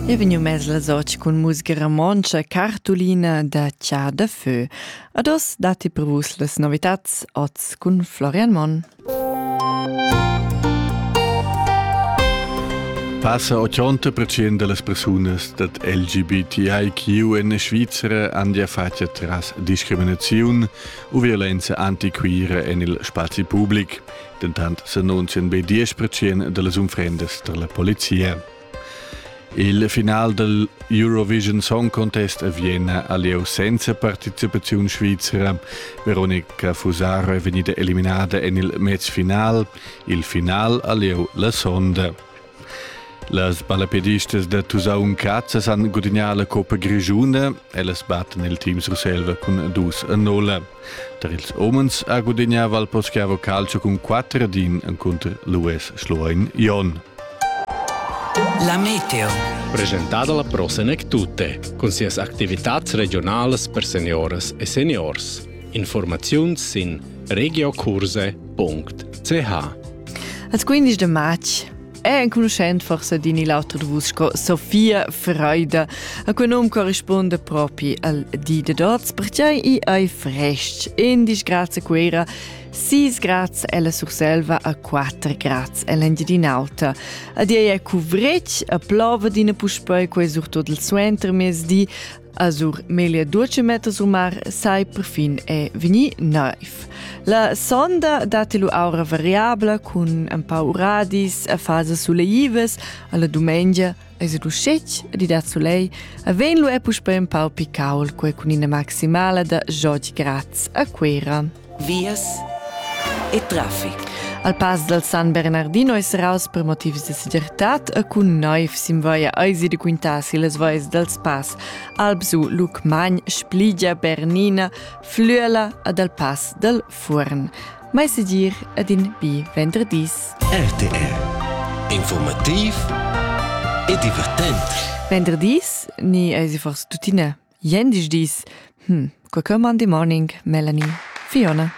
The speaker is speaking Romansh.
E vegniu mess la soc cun musica romontscha cartulina da Char de Feu. Ad oz datti per vus las novitats oz cun Florian Monn. Passa 80% delle persone dat LGBTIQ in Svizzera han ja fatg tras discriminaziun u violenza antiquira en il spazi public. dentant s'annunzian be diesch percent da las unfrendas tar la polizia. Il final del Eurovision Song Contest a Vienna ha lieu senza participaziun svizzera. Veronica Fusaro è vegnida eliminada en il mezfinal. Il final ha lieu la sonda. Las balapedistas da Tusaun Cazza san gudignar la Coppa Grigiuna. Ellas batten il team Surselva cun dus a nolla. Tar ils omens ha gudignà Valposchiavo Calcio cun quatter din encunter l'US Schloein Jon. La meteo. Presentada la prossima tutte, con sias attivitads regionales per senioras e seniors. Informaziuns sin regiokurse.ch Als 15 de marz è enconuschent forse din il auter de vus sco Sofia Freude, a cui num corrisponde propri al di de dots, perciai i ei frestg, in disgrazia quera, sis grazie ella Surselva a quattro grazie ell'Engiadin'Alta. Ad ei è cuvretg, a plova dina puspei quei surtut il suenter mesdi, Azur meglio dolce mettas umar sai perfin è veni naiv. La sonda datti lu aura variabla cun un pau uradis a fase suleives alla domenica es du scec di da sulei a ven lu è puspè un pau picaul quei cun ina maximala da jod graz a Quera. vias e traffic. Al pass dal San Bernardino è serraus per motivs de segirtad e cun noiv simvaia eisi de quintasi les vois dals pass Albsu, Lucmagn, Spligia, Bernina, Flüela ed al pass dal Furn. Mai segir ed in bi venderdis. RTR Informativ e divertent. Venderdis ni eisi forse tuttina? Gliendisdis. Hm, quei che mandi morning, Melanie. Fiona.